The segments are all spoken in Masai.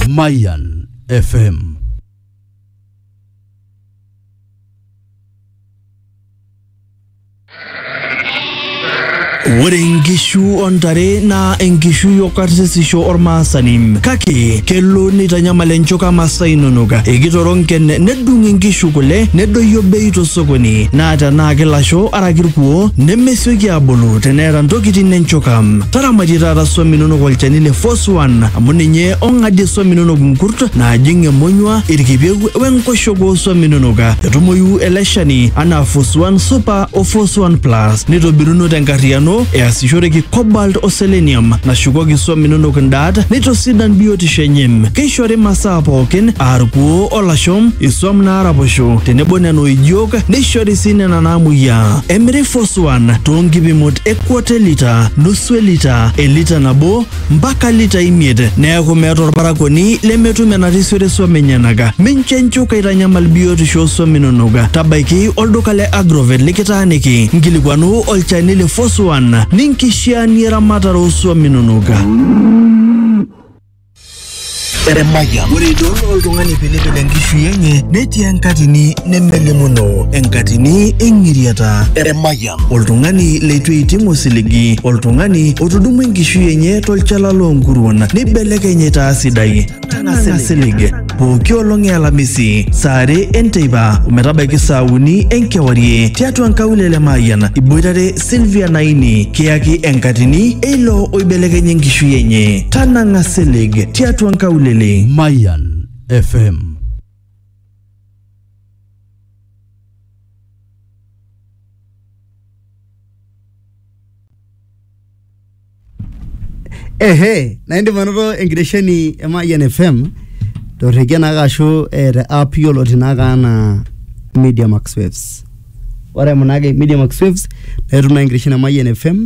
Mayan FM. Ore nkishu ontare naa enkishui okarsisisho ormaasani kake kelo neitanyamal enchoka masaa inonok ekitoro nken nedung inkishu kule nedoyio bei tosokoni naa tenaa kilasho araki irkuo nemesioki abulu teneeta ntokitin enchoka taramatie taata swam inonok olchani le Foswan amu ninye ong'adie swam inonok nkurt naajing emonyua, irkipieu wenkoshoke oo swam inonok. Etumoyu ele shani anaa Foswan Super o Foswan Plus neitobiruno tenkarriyiano easishoreki cobalt o selenium nashukoki swam inonok ndaat neitosidan biotisho enye. Keishori masaa pookin aa irkuoo o lasho, iswam naaraposho tenebo nena oijiok neishori sii nena naamuoyiaa. Emiri Foswan too nkipimot e quarter lita, nusu elita, elita nabo mpaka lita imiet. Neeku meeta olparakuoni lemetum enarisiore swam enyenaka. Mincho enchuka aitanyamal biotisho oo swam inonok. Tabaiki olduka le Agrovet likitaaniki, nkilikuanu olchani le Foswan ninkishiaanie eramatare oo swam inonok. Emayian. Ore idol oltung'ani pilipil enkishui enye netii enkatini nemelimuno enkatini eng'iriata. Emayian. Oltung'ani leitu eiting osiligi, oltung'ani otudumua enkishui enye tolchala loonkuruon neibelekeny aitaa sidai. Tang'asa silig. Pooki olong e Alamisi saa are enteipa ometabaiki saa uni enkewarie tiatua nkaulele Mayian iboitare Sylvia Naini kiyaki enkatini eilo oibelekenya enkishui enye. Tanang'a silig tiatua nkaulele. Mayan FM. Ehe, na indim anoto enkitesheni e Mayian FM torrekie naake ashu eh, te app yioloti naake anaa Media Max Waves. Ore eimu naake Media Max Waves naa itum naake enkitesheni e Mayian FM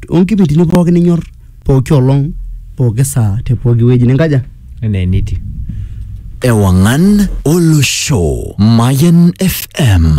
onkipindini pookin ninyor pooki olong, pooki saa te pooki wueji ninkaja. enaa enitiu Ewangan Olosho Mayan FM